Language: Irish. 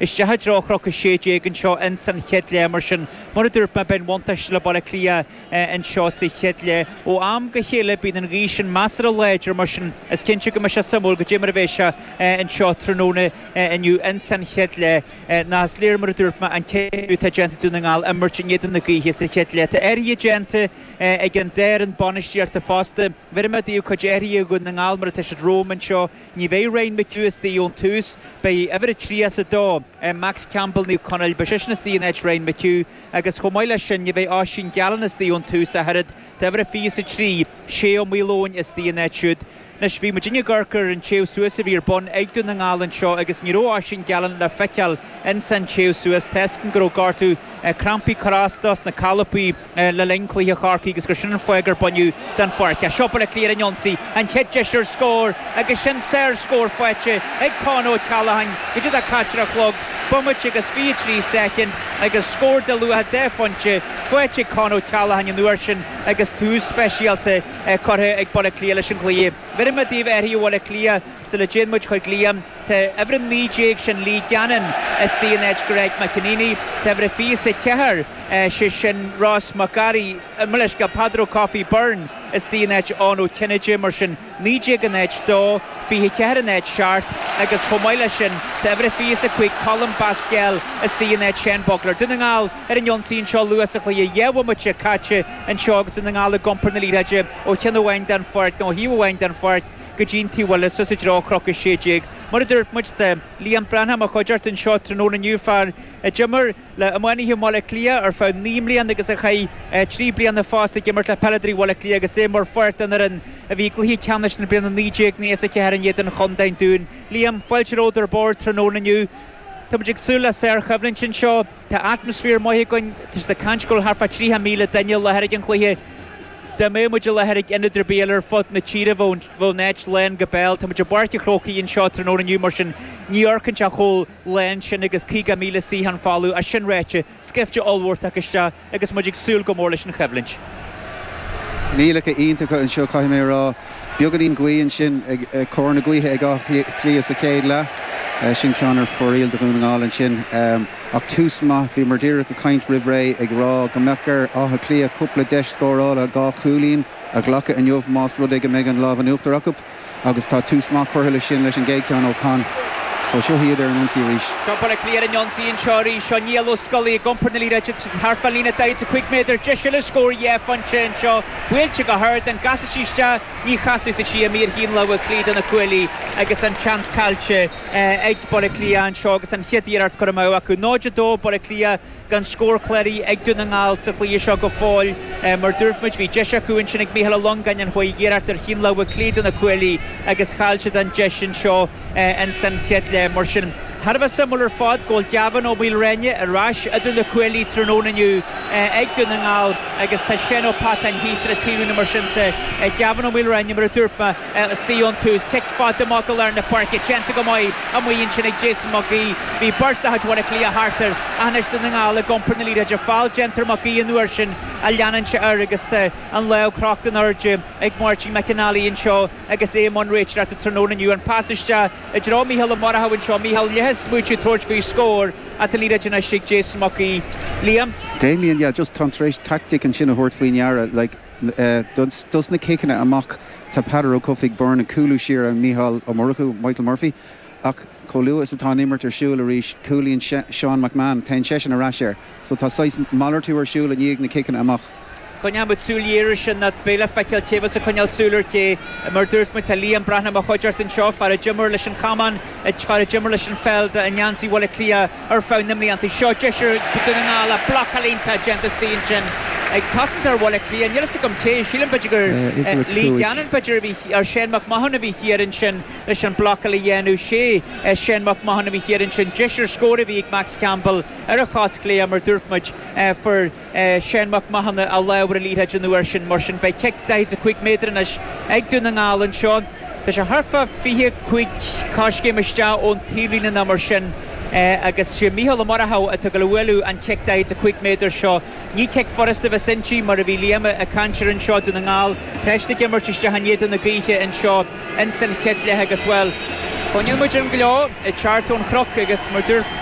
Isteach i dtreo Chnoc 16 anseo ins an chéad leath mar sin. Mar a dúirt mé beidh an bhuntáiste le Baile Átha Cliath anseo sa chéad leath. Ó am go chéile bíonn an ghaoth sin measartha láidir mar sin is cinnte go mbeidh sé suimiúil goidé mar a bheas sé anseo tráthnóna inniu ins an chéad leath. Nó is léir mar a dúirt mé an cinneadh atá déanta ag Dún na nGall imirt in éadan na gaoithe sa chéad leath. Tá athruithe déanta ag an dá fhoireann bainistíochta fosta. Bheir mé daoibh cuid athruithe Dhún na nGall mar atá siad romham anseo. Ní bheidh Ryan McHugh astoigh ón tús. Beidh uimhir a trí a's a dó, Max Campbell, Naomh Conaill, beidh seisean astoigh in áit Ryan McHugh agus chomh maith leis sin ní bheidh Oisín Gallen astoigh ón tús ach oiread. Tá uimhir a fiche is a trí, Shea Malone, astoigh ina áit siúd. Anois, bhí muidinne ag amharc ar an téamh suas a bhí ar bun ag Dún na nGall anseo agus ní raibh Oisín Gallen le feiceáil ins an téamh suas tá a fhios againn go raibh gortú, crampaí ag cur as dó sna colpaí. le linn cluiche Chorcaí agus gur sin an fáth gur baineadh den pháirc é. Seo Baile Átha Cliath ar an ionsaí, an chéad deis ar scór agus sin sárscór faighte ag Con O'Callaghan goidé atá caite ar an chlog, bomaite agus 23 soicind agus scór de luach dhá phointe faighte ag Con O'Callaghan an uair sin agus tús speisialta curtha ag Baile Átha Cliath leis an gcluiche. Bheir mé daoibh athruithe Bhaile Átha Cliath sula dtéann muid chuig Liam. Tá uimhir a naoi déag, sin Lee Gannon, astoigh in áit Greg McEneaney. Tá uimhir a fiche is a ceathair, sé sin Ross McGarry, mo leithscéal, Peadar Ó Cofaigh Byrne astoigh in áit Eoin Ó Cinnéide, mar sin, naoi déag in áit dó, fiche ceathair in áit seacht, agus chomh maith leis sin, tá uimhir a fiche is a cúig Colm Basquel astoigh in áit Seán Bugler. Dún na nGall ar an ionsaí anseo luath sa chluiche, dhá bhomaite caite anseo agus Dún na nGall ag iompar na liathróide ó cheann amháin den pháirc, nó ó thaobh amháin den pháirc, go dtí'n taobh eile, suas i dtreo Chnoc 16. Mar a dúirt muid, tá Liam Breathnach i mo chuideachta anseo tráthnóna inniu, fear a d'imir. le iománaithe Bhaile Átha Cliath ar feadh naoi mbliana agus a chaith trí bliana fosta ag imirt le peileadóirí Bhaile Átha Cliath agus é mar pháirt den fhoireann a bhí i gcluiche ceannais na bliana 1994 in éadan Chontae an Dúin. Liam, Fáilte romhat ar bord tráthnóna inniu. Tá muid ag súil le sárchoimhlint anseo. Tá atmaisféar maith againn. Tá siad ag caint go bhfuil thart fá 30,000 duine i láthair ag an chluiche. Dá mbeadh muid i láthair ag ionad ar bith eile ar fud na tíre bheadh an áit lán go béal. Tá muid i bPáirc an Chrócaigh anseo tráthnóna inniu mar sin ní amharcann sé chomh lán sin agus 50,000 suíochán folamh. É sin ráite, scaifte ollmhór tagtha isteach agus muid ag súil go mór leis an choimhlint. Coinníollacha iontacha anseo caithfidh mé a rá. Beagáinín gaoth ansin ach cóir na gaoithe ag Áth Cliath sa chéad leath. Sin ceann ar fóraoil do Dhún na nGall ansin. Ach tús maith. Bhíomar díreach ag caint roimh ré ag rá go mbeadh ar Áth Cliath cúpla deis scórála, dhá chúilín, a ghlacadh inniu más rud é go mbeidh an lámh in uachtar acu. agus tá tús maith curtha leis sin leis an gcéad ceann ó Con so seo iad ar an ionsaí arís. Seo Baile Átha Cliath ar an ionsaí anseo arís. Seo Niall Ó Scolaí ag iompar na liathróide tríd thart fán líne 45 méadar. Deis eile scór dhá phointe anseo. Buailte go hard, an gcasfaidh sí isteach? Ní chasfaidh tá sí imithe ar thaobh na láimhe clí do na cuaillí agus an seans caillte ag Baile Átha Cliath anseo agus an chéad iarracht curtha amú acu. 0-2 Baile Átha Cliath. gan scór cláraithe ag Dún na nGall sa chluiche seo go fóill. Mar dúirt muid, bhí deis acu ansin ag Micheál Ó Longáin ach chuaigh iarracht ar thaobh na láimhe clí do na cuaillí agus chaill siad an deis sin seo insan chéad leath. Mar sin, thar a bheith suimiúil ar fad go bhfuil Gavin Ó Maoilreáine ar ais idir na cuaillí tráthnóna inniu ag Dún na nGall agus tá Séan Ó Pattáin thíos ar an taobhlíne mar sin de Gavin Ó Maoilreáine mar a dúirt mé. Istigh ón tús, cic fada maith go lár na páirce, déanta go maith amuigh ansin ag Jason Mac Aoidh. Bhí beirt de chuid Bhaile Átha Cliath thart air ach anois Dún na nGall ag iompar na liathróide feall déanta ar Mac Aoidh an uair sin ach leanann sé air agus tá an lámh crochta in airde ag Máirtín McNally anseo agus é i mbun réiteoireachta tráthnóna inniu. An pas isteach i dtreo Mícheál Ó Murchadha anseo, Mícheál leath ag smaoitiú tabhairt faoi scór ach tá liathróid anois ag Jason Mac Aoidh. Liam. Damien, Yeah, just táim tar éis taictic ansin a thabhairt faoi ndeara, like, Dos na ciceanna amach, tá Peadar Ó Cofaigh, Byrne, ag cúlú siar ar Mhícheál Ó Murchú, Michael Murphy, ach chomh luath is atá an imirt ar siúl arís, cúlaíonn Seán McMahon, téann seisean ar ais air. So tá saghas malartú ar siúl i ndiaidh na ciceanna amach. Coinneoidh muid súil ghéar ar sin, nach beidh le feiceáil cé a bheas ag coinneáil súil ar ché. Mar a dúirt muid, tá Liam Breathnach i mo chuideachta anseo, fear a d'imir leis an chamán, fear a d'imir leis an pheil, do i ngeansaí Bhaile Átha Cliath, Ar feadh na mblianta seo, deis ag Dún na nGall ach blocáil iontach déanta istigh ansin. Ag cosantóir Bhaile Átha Cliath, níl fhios agam cé, sílim b'fhéidir gur Lee Gannon b'fhéidir a bhí, or Séan Mac Mathúna a bhí thiar ansin leis an bhlocáil a dhéanamh, sé Séan Mac Mathúna a bhí thiar ansin. Deis ar scór a bhí ag Max Campbell ar a chos chlé mar dúirt muid fuair, Séan Mac Mathúna a lámh ar an liathróid an uair sin mar sin beidh cic 45 méadar anois ag Dún na nGall anseo. Tá sé thart fá 25 coiscéim isteach ón taobhlíne ná mar sin agus sé Micheál Ó Murchadha atá ag gabháil a bhualadh an chic 45 méadar seo. Ní cic furasta a bheas inti mar a bhí Liam ag caint air anseo, Dún na nGall tá siad ag imirt isteach in éadan na gaoithe anseo insan chéad leath agus, bhuel, cluineann muid an gleo ag teacht ón chnoc agus mar dúirt